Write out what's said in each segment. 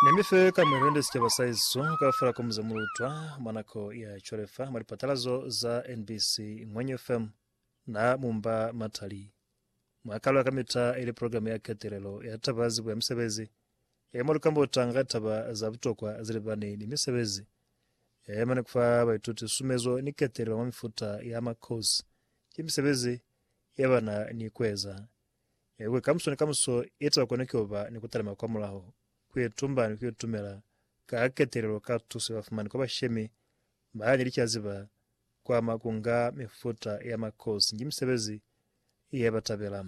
Ne mi fe ka mwelende sicaba sa heso kaufela ko muze mu lutwa mwa nako ya cwale fa mwa lipatalazo za NBC Ngwenyu FM. Na mu mba matali. Mwa kalwa kamita ili programe ya ketelelo ya taba zibuya misebezi ye mwa lukambota nga taba za butokwa zilibani ni misebezi ye mane kufa baituti sumezo ni ketelelo mwa mifuta ya makosi ki misebezi ye bana ni kueza. Kuli kamuso ni kamuso eza kona kuba ni kutalima kwa mulaho, kuitumba ni kuitumela ka ketelelo ka tuso yabafumani kwa bashemi baani licazi ba kwama kunga mifuta ya makosi ki misebezi ye batabela.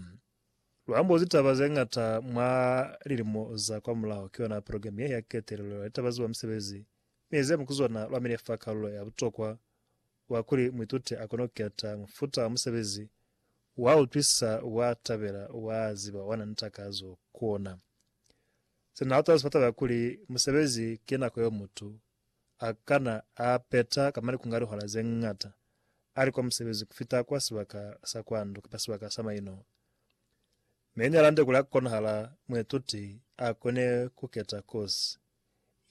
Luambozi taba zeñata mwa lilimo za kwa mulaho ki yona program ye ya ketelelo ya litaba ziwa misebezi mi zemu kuzona lwamile fa kalulo ya butokwa wa kuli muituti a kono keta mufuta wa musebezi wa utwisisa wa tabela wa ziba wa na ni takazo ku ona. Se na utahezi fa taba ya kuli musebezi ki nako yeo mutu a kana a peta kamba ni kunga lihora ze ñata a li kwa musebezi ku fita kwa sibaka sa kwa ndu kamba sibaka sa maino. Me ni alande kuli ha konahala muituti a kone ku keta kosi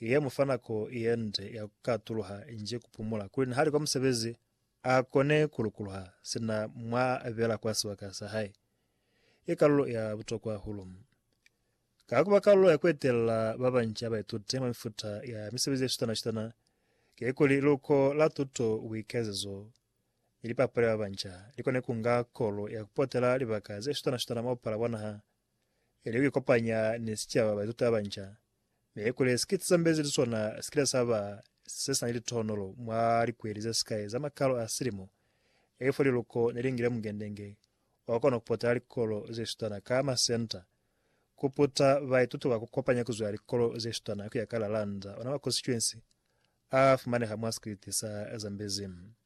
Ye mu fa nako ye nde ya ku katuluha inge ku pumula, kuli nihali kwa musebezi a kone ku lukuluha sina mwa abela kwa sibaka sa hae. Ki kalulo ya butokwa hahulu. Ka ku ba kalulo ya ku etelela ba banca ba baituti mwa mifuta ya misebezi ye shutana-shutana, kikuli liluko la tuto, buikezezo, ni lipapali ba banca li kone ku nga kolo ya ku potela libaka ze shutana-shutana mwa bupala bwa naha ili ku ikopanya ni sicaba baituti abanca, mi kuli si ki sisambezi li sona si kile sa ba se si na ni litohonolo mwa likweli ze sikai za makalo a silimo, ilifo liluko ne li ngile mukendenge o kona ku potela likolo ze shutana ka masenta, ku puta baituti ba ku kopanya ku zwa likolo ze shutana ku ya ka Lalanda, ona makonsituensi a fumaneha mwa sikiliti sa Zambezi.